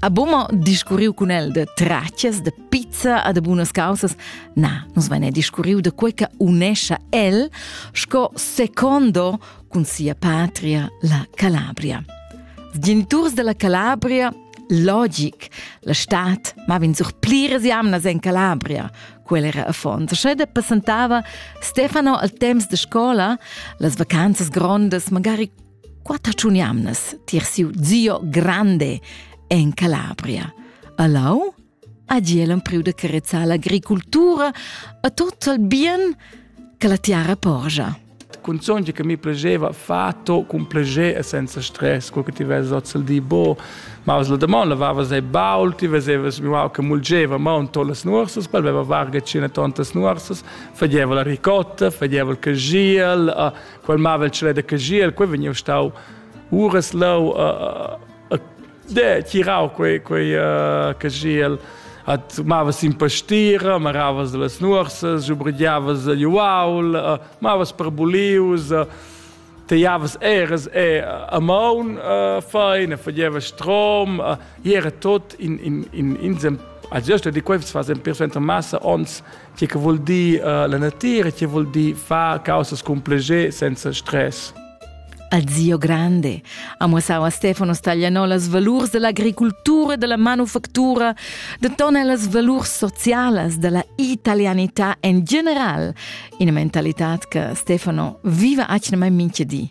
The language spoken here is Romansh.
A Buma discurriu cun el de tracias, de pizza e de bunas causas. Na, nus vene discurriu de quei che unescia el sco secondo cun sia patria, la Calabria. Als geniturs della Calabria logic. La stat maven sur pliras jamnas en Calabria, quel era affons. Sche de passentava Stefano al temps de scola, las vacanzas grondas, magari quatter tschun jamnas tier siu zio grande en Calabria. Alau, agi el empriu de carezzar l'agricultura a tot il bien che la tiara porgia. Cunzogni che mi piaceva fatto con piacere e senza stress, quel che ti vedi oz il di bo, ma la demon lavavas dei baul, ti vesevas mi wow che mulgeva monto las nuorsas, quel aveva varga cine tontas nuorsas, fageva la ricotta, fageva il cagiel, quel mavel ce da cagiel, quei vegniu stau uras leu a de tirau quei quei cagiel at mavas in pastira, maravas las nuorsas, jubregiavas gli uaul, mavas per bulius, teiavas eras e a maun feina, fageva strom, era tot in in in insem, a gesta di quei fas en persuenter massa ons Tge che vul dir uh, la natira, tge vul dir far causas cun plascher senza stress. Azio Grande ha muossau a Stefano Staglianolas valurs dell'agricoltura e della manufactura, detona las valurs socialas della italianità en general, ina mentalità che Stefano viva atgnamai minchedi.